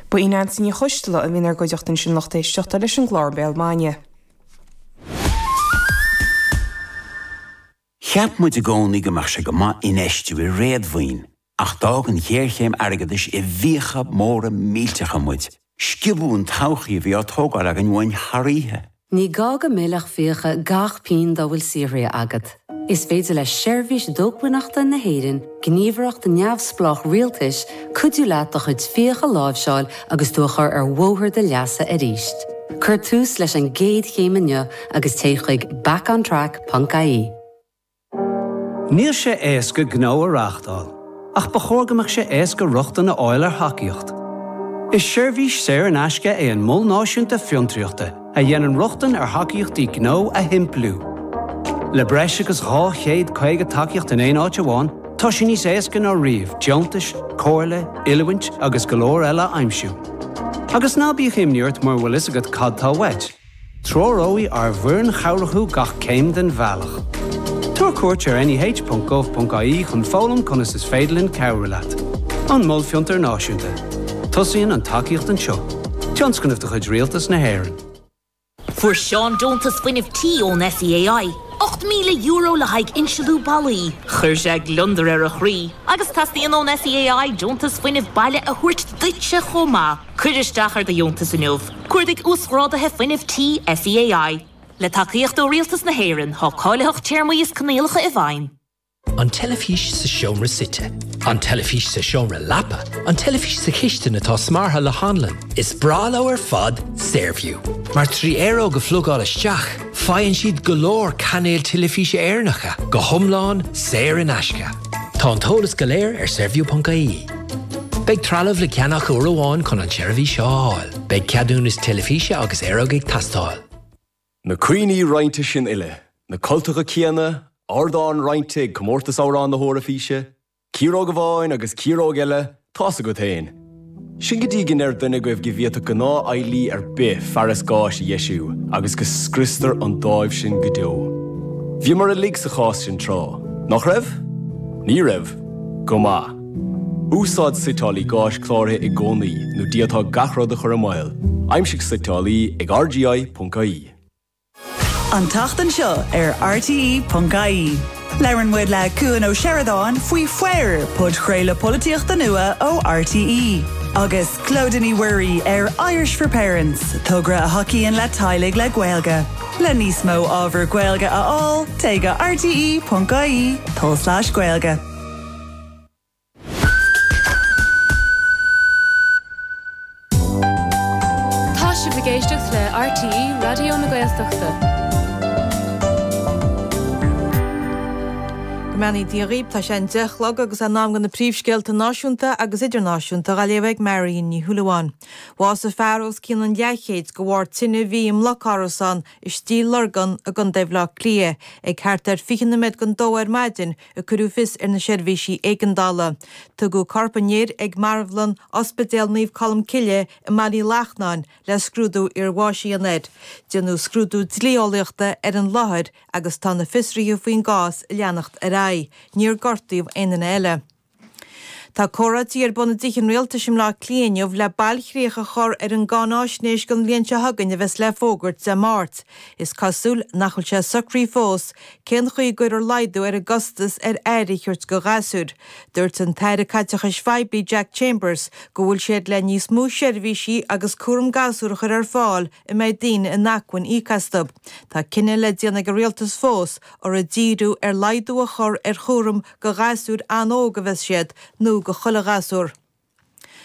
Ba í Neansaí Ní Choisdealbha a bhí inár gcuideachta ansin lucht éisteachta leis an gclár Béal Maidine. Cheap muid i gcónaí go mbeadh sé go maith infheistiú i réadmhaoin ach d'fhág an ghéarchéim airgeadais i bhfiacha móra millteacha muid Sciobadh an todhchaí a bhí á tógáil againn uainn thar oíche. Ní gá go millfeadh fiacha gach pingin dá bhfuil saothraithe agat. Is féidir le Seirbhís Dócmhainneachta na hÉireann, gníomhaireacht neamhspleách rialtais, cuidiú leat do chuid fiacha a láimhseáil agus tú a chur ar bhóthar do leasa arís. Cuir tús leis an gcéad chéim inniu agus téigh chuig back-on-track ponc ie. Níl sé éasca gnó a reáchtáil, ach ba chóir go mbeadh sé éasca rochtain a fháil ar thacaíocht. Is seirbhís saor in aisce é an Mol Náisiúnta Fiontraíochta a dhéanann rochtain ar thacaíochtaí gnó a shimpliú. Le breis agus 250 tacaíocht in aon áit amháin, tá sé níos éasca ná riamh deontais, comhairle, oiliúint agus go leor eile a aimsiú. Agus ná bíodh imní ort mura bhfuil a fhios agat cad tá uait, Treoróidh ár bhfoireann chabhrach thú gach céim den bhealach. Tabhair cuairt ar neh.gov.ie chun foghlaim conas is féidir linn cabhrú leat. An Mol Fiontar Náisiúnta. Tosaíonn an tacaíocht anseo. Tionscnamh de chuid Rialtas na hÉireann. Fuair Seán deontas fuinnimh tí ón SEAI, €8,000 le haghaidh insliú ballaí. Chuir sé gliondar ar a chroí agus teastaíonn ón SEAI deontas fuinnimh baile a thabhairt duitse chomh maith. Cuir isteach ar do dheontas inniu! Cuardaigh Uasghráduithe Fuinnimh Tí SEAI. Le tacaíocht ó Rialtas na hÉireann, tá cáilitheacht téarmaí is coinníollacha i bhfeidhm. An teilifís sa seomra suite. An teilifís sa seomra leapa. An teilifís sa chistin atá smeartha le hanlann. Is breá leo ar fad Saorview, mar trí aeróg a phlugáil isteach, faigheann siad go leor cainéil teilifíse Éireannacha, go hiomlán saor in aisce. Tá an t-eolas go léir ar Saorview ponc ie. Beidh trealamh le ceannach uair amháin chun an tseirbhís seo a fháil. Beidh ceadúnas teilifíse agus aeróg ag teastáil. Na cuimhní roinnte sin uile, na cultacha céanna, ardán roinnte ag Comórtas Amhrán na hEoraifíse, ciaróg amháin agus ciaróg eile Tá's agat fhéin. Sin go dtí go ndeir duine agaibh go bhféadfadh gnáth-fheighlí ar bith fearas gáis a dheisiú agus go scriostar an dáimh sin go deo. Bhíomar uilig sa chás sin tráth, nach raibh? Ní raibh? Go maith. Úsáid suiteálaí gáis cláraithe i gcónaí nó d'fhéadfá gach rud a chur i mbaol, aimsigh suiteálaí ag rgi.ie. An tseachtain seo ar RTÉ.ie, labhrann muid le Cuan Ó Seireadáin faoi Foir, podchraoladh polaitíochta nua ó RTÉ, agus Clodagh Ní Mhuirí ar Irish for Parents, togra a thacaíonn le teaghlaigh le Gaeilge. Le níos mó ábhar Gaeilge a fháil, téigh go rte.ie/gaeilge. Tá sibh ag éisteacht le RTÉ Raidió na Gaeltachta. Go mbeannaí Dia dhaoib, tá sé an deich chlog agus é in am go na príomhscéalta náisiúnta agus idirnáisiúnta dha léamh ag Marian Ní Shúilleabháin. Bhásaigh fear os cionn an leathchéid de bharr tine a bhí i mbloc árasán i Stigh Lorgan i gContae Bhleá Cliath ag thart ar fiche nóiméad don dó ar maidin a cuireadh fios ar na seirbhísí éigeandála. Tugadh corp an fhir ag Marbhlann Ospidéal Naomh Colm Cille i mBaile Uí Lachnáin le scrúdú iarbháis a dhéanamh air. Déanfar scrúdú dlí-eolaíochta ar an láthair agus tá na fiosruithe faoin gcás ag leanacht ar aghaidh. Níor gortaíodh aon duine eile. Tá comhráití ar bun i dTithe an Rialtais i mBleá Cliath inniu le bailchríoch a chur ar an gcáináisnéis don bhliain seo chugainn a bheas le fógairt Dé Máirt. Is cosúil nach bhfuil sé socraithe fós Cén chaoi a gcuirfear laghdú ar an gcostas ar aire a thabhairt do ghasúir? Dúirt an tAire Caiteachais Phoiblí Jack Chambers go bhfuil siad le níos mó seirbhísí cúram gasúr a chur ar fáil a mbeidh daoine in acmhainn íoc astu. Tá cinneadh le déanamh ag an Rialtas fós, an ag díriú ar laghdú a chur ar chúram do ghasúir an-óg a bheas siad nó do chuile ghasúr.